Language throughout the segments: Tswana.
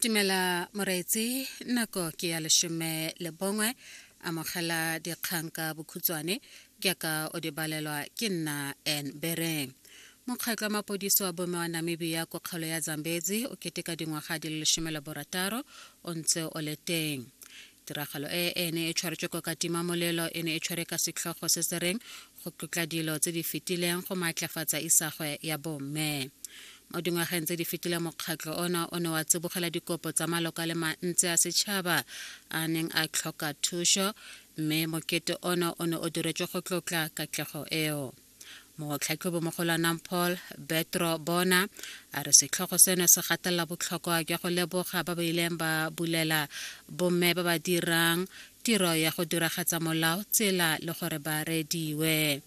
timela moreetsi nako ke ya leshome le bongwe amogela dikgang ka bokhutshwane ke ka o di balelwa ke nna en bereng mokgatlho wa mapodisi wa bome wa namibia ko kgolo ya zambezi o keteka dingwaga di le lesome le borataro o ntse o le teng tiragalo e e ne e tshwaretswe ko katima molelo e ne e tshwere ka setlhogo se se reng go tlotla dilo tse di fetileng go maatlafatsa isagwe ya bomme mo dingwageng tse di fetileng mokgatlho ona o ne wa tsibogela dikopo tsa maloko a le mantsi a setšhaba a neng a tlhoka thuso mme mokete ona o ne o diretswe go tlotla katlego eo Motlhatlhobimogolo Anang Paul Betro Bona a re setlhogo seno se gatelela botlhokwa jwa go leboga ba ba ileng ba bulela bomme ba ba dirang tiro ya go diragatsa molao tsela le gore ba rediwe.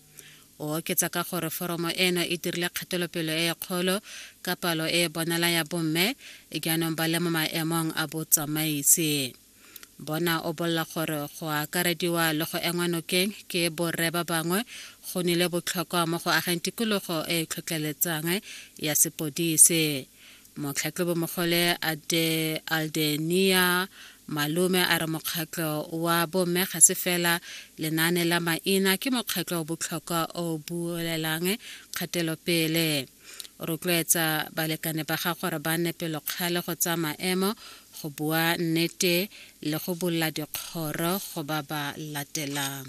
O oketsa ka gore foromo eno e dirile kgatelopelo e e kgolo ka palo e e bonala ya bomme jaanong ba le mo maemong a botsamaisi. Bona o bolela gore go akarediwa le go engwa nokeng ke borre ba bangwe go nile botlhokwa mo go ageng tikologo e e tlhotlheletsang ya sepodise. Motlhatlhobomogole Aldenia Malume a re mokgatlho wa bomme ga se fela lenaane la maina, ke mokgatlho o botlhokwa o buelelang kgatelopele. o rotloetsa balekane ba ga gore ba nne pelokgale go tsaya maemo go bua nnete le go bolola dikgoro go ba ba latelang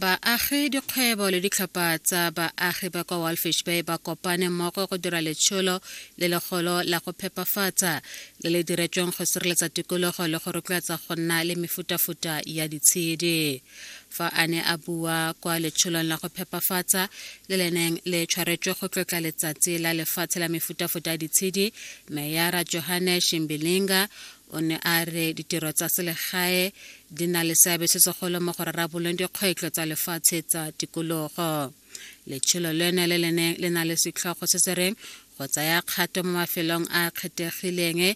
baagi dikgwebo le ditlhopha tsa baagi ba kwa walfish bay ba kopane mmogo go dira letsholo le legolo la go phepafatsa le le diretsweng go sireletsa tikologo le go rotloetsa go nna le mefutafuta ya ditshedi fa a ne a bua kwa letsholong la go phepafatsa le leneng le tshwaretswe go tlotla letsatsi la lefatshe la mefutafuta ya ditshedi meyara johanne shimbilinga o ne a re ditiro tsa selegae di na le seabe se segolo mo go rarabolong dikgwetlho tsa lefatshe tsa tikologo letsholo leno le leneng le na le setlhogo se se reng go tsaya kgato mo mafelong a kgethegileng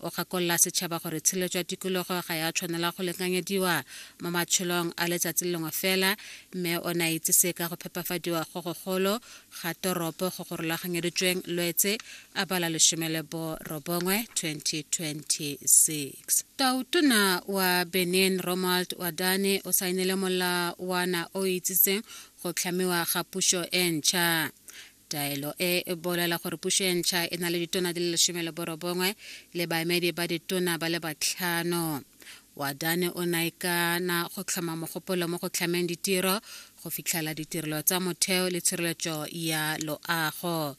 o gakolola setšhaba gore tshilo jwa tikologo ga ya tshwanela go lekanyediwa mo matsholong a letsatsi lengwe fela mme o ne a itsise ka go phepafadiwa go gogolo ga toropo go go rulaganyeditsweng lwetse a bala lesome le borobongwe 2026 tautona wa benin romald wadane o saenele molawana o itsitseng go tlhamiwa ga pušo e ntšha Taelo e e bolela gore puso e ntšha e na le ditona di le lesome le borobongwe le baemedi ba ditona ba le batlhano. Wadane o naekana go tlhoma mogopolo mo go tlhameng ditiro, go fitlhela ditirelo tsa motheo le tshireletso ya loago.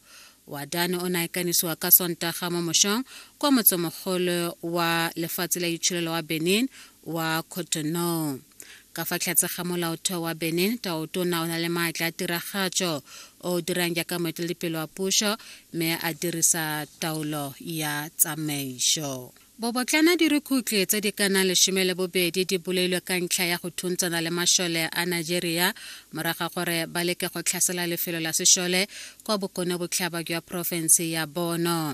Wadane o naekanisiwa ka Sontaga mo mošong kwa motsemogolo wa lefatshe la itsholelo wa Benin wa Cotonou. ka fa tlhatse ga molaotheo wa benin taotona o na le maatla a tiragatso o o dirang jaaka moeteledipele wa puso mme a dirisa taolo ya tsamaiso Bobotlana dirukhutlhe tse di ka nang lesome le bobedi di bolailwe ka ntlha ya go thuntshana le mašole a Nigeria moraga gore ba leke go tlhasela lefelo la sešole kwa bokone botlhaba jwa porofense ya Bono.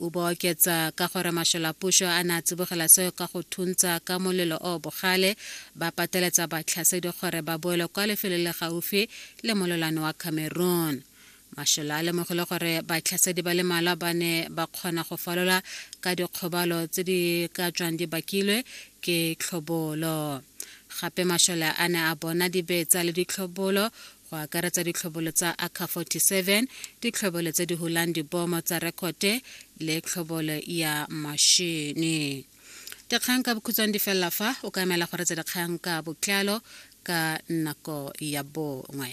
O ba oketsa ka gore masholapušo a ne a tsibogela seo ka go thuntsa ka molelo o bogale, ba pateletsa batlhasedi gore ba boele kwa lefelo le gaufi le mololwane wa Cameroon. Mashola a lemogile gore batlhasedi ba le malwa ba ne ba kgona go falola ka dikgobalo tse di ka tswang di bakilwe ke tlhobolo. Gape mashole a ne a bona dibetsa le ditlhobolo go akaretsa ditlhobolo tsa aka 47 ditlhobolo tse di hulang dibomo tsa rekote le tlhobolo ya mashene dikgang ka bokhutshwane di felela fa o ka emela go retsa dikgang ka botlalo ka nako ya bongwe